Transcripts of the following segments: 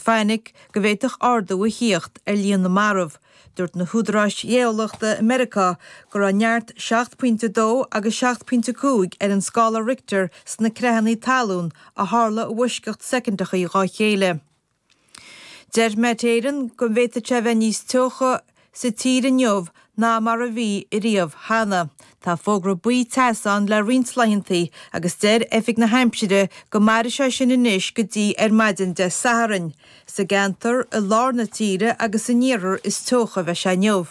Fainic go bhféadfadh ardú a thíocht ar líon na marbh. Dúirt na húdaráis gheolaíochta i Meiriceá go raibh neart 7 pointe 2 agus 7 pointe 5 ar an scála Richter sna creathanna talún a tharla i bhfoisceacht soicindeacha dhá chéile. Deir Met Éireann go bhféadfadh sé a bheith níos teocha i sa tír inniu ná mar a bhí riamh cheana. Tá fógra buí teasa ann le roinnt laethanta agus deir Oifig na hAimsire go mairfidh sé sin anois go dtí ar maidin Dé Sathairn. Sa gceantar i lár na tíre agus san iarthar is teocha a bheidh sé inniu.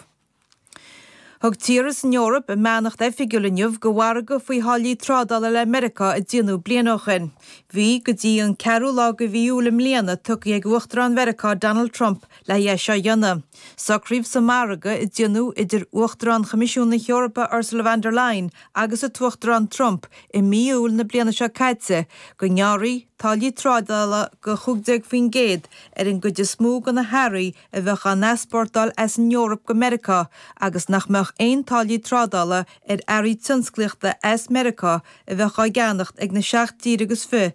Thug tíortha san Eoraip a mbeannacht oifigiúil inniu do mhargadh faoi tháillí trádála le Meiriceá a déanadh bliain ó shin. Bhí go dtí an ceathrú lá de mhí Iúil i mbliana tugtha ag Uachtarán Mheiriceá Donald Trump le haghaidh seo a dhéanamh, socraíodh sa mhargadh a déanadh idir Uachtarán Choimisiún na hEorpa Ursula von der Leyen agus an tUachtarán Trump i mí Iúil na bliana seo caite go ngearrfaí táillí trádála de 15% ar an gcuid is mó de na hearraí a bheadh á n-easpórtáil as an Eoraip go Meiriceá agus nach mbeadh aon táillí trádála ar earraí tionsclaíochta as Meiriceá a bheadh á gceannacht ag na seacht dtír agus fiche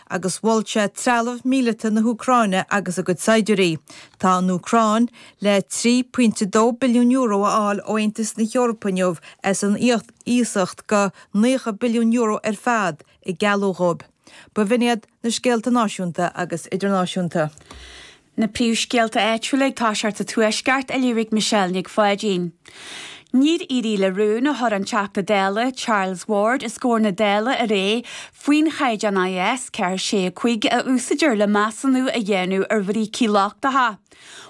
agus mhol sé trealamh míleata na hÚcráine agus a gcuid saighdiúirí. Tá an Úcráin le €3.2 billiún a fháil ó Aontas na hEorpa inniu as an iasacht de €90 billiún ar fad a gealladh dhóibh. B'in iad na scéalta náisiúnta agus idirnáisiúnta. Na príomhscéalta áitiúla ag toiseacht sa Tuaisceart a léirigh Michelle Nic Pháidín. Níor éirigh le rún a chuir an Teachta Dála Charles Ward os comhair na Dála aréir faoin chaighdeán IS 465 a úsáidear le measúnú a dhéanamh ar bhrící lochtacha.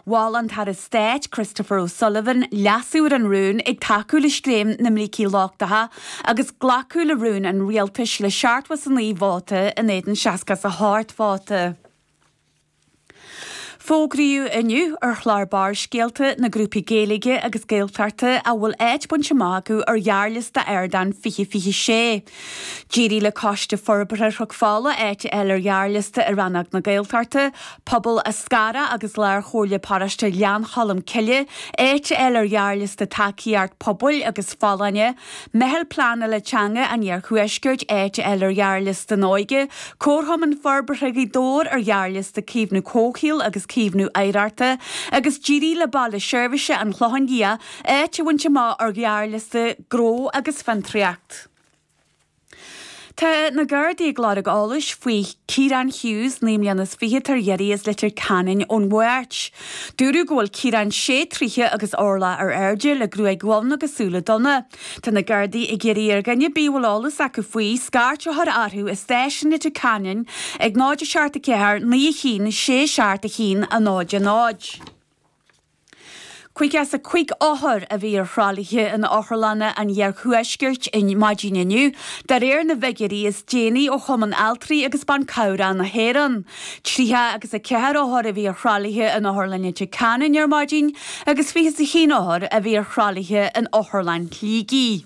Mhol an tAire Stáit Christopher O'Sullivan leasú ar an rún ag tacú le scéim na mbrící lochtacha agus glacadh le rún an Rialtais le 79 vóta in éadan 67 vóta. Fógraíodh inniu ar chlár Barrscéalta na grúpaí Gaeilge agus Gaeltachta a bhfuil áit bainte amach acu ar ghearrliosta Ardán 2026. D'éirigh le Coiste Forbartha Chnoc Fola áit a fháil ar ghearrliosta i rannóg na Gaeltachta, Pobal Eascarrach agus Lárchomhairle Paróiste Ghleann Cholm Cille áit a fháil ar ghearrliosta Tacaíocht Pobail agus Folláine, Meitheal Pleánala Teanga an Iarthuaiscirt áit a fháil ar ghearrliosta an Óige, Comharchumann Forbartha Ghaoth Dobhair ar ghearrliosta Caomhnú Comhshaoil agus Caomhnú Oidhreachta agus d'éirigh le Baile Seirbhise an Chlocháin Liath áit a bhaint amach ar ghearrliosta Gnó agus Fiontraíocht. Tá na Gardaí ag lorg eolais faoi Kieran Hughes, naoi mbliana is fiche, atá ar iarraidh as Leitir Ceanainn ón Mháirt. Dúradh go bhfuil Kieran sé troighe agus orlach ar airde, le gruaig dhonn agus súile donna. Tá na Gardaí ag iarraidh ar dhuine ar bith a bhfuil eolas acu faoi, scairt a chur orthu i Stáisiún Leitir Ceanainn ag 0 7 4 9 1 6 7 1 0 0. Caoga is a cúig othar a bhí ar thralaithe in Otharlanna an Iarthuaiscirt ar maidin inniu, de réir na bhfiguirí is déanaí ó Chumann Altraí agus Ban Cabhrach na hÉireann. Tríocha agus a ceathair othar a bhí ar thralaithe in Otharlann Leitir Ceanainn ar maidin agus fiche is a haon othar a bhí ar thralaithe in Otharlann Shligigh.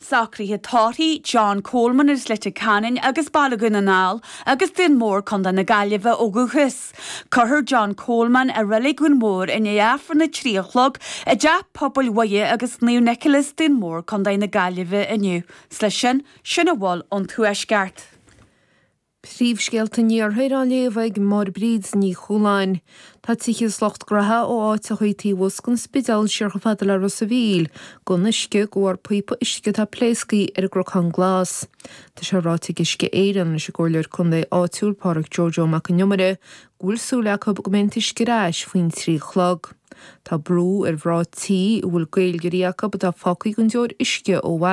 Socruithe tórraimh, John Coleman as Leitir Ceanainn agus Baile Dhún na nGall agus Dún Mór, Co. na Gaillimhe ó dhúchas. Cuirfear John Coleman i Reilig Dhún Mór i ndiaidh Aifreann a trí a chlog i dTeach Pobail Mhuire agus Naomh Nicholas, Dún Mór, Co. na Gaillimhe inniu. Is leis sin, sin a bhfuil ón Tuaisceart. Príomhscéalta an Iarthair á léamh ag Máire Bríd Ní Chualáin. Tá tithe is lucht gnaithe ó áiteachaí taobh abhus den Spidéal siar chomh fada le Ros a' Mhíl, gan uisce, de bharr píopa uisce atá pléasctha ar an gCnocán Glas. Tá sé ráite ag Uisce Éireann leis an gComhairleoir Contae áitiúil Pádraic Jojo Mac an Iomaire go bhfuil súil acu go mbeidh an t-uisce ar ais faoin trí a chlog. Tá brú ar mhná tí a bhfuil Gaeilgeoirí acu atá fágtha gan deoir uisce ó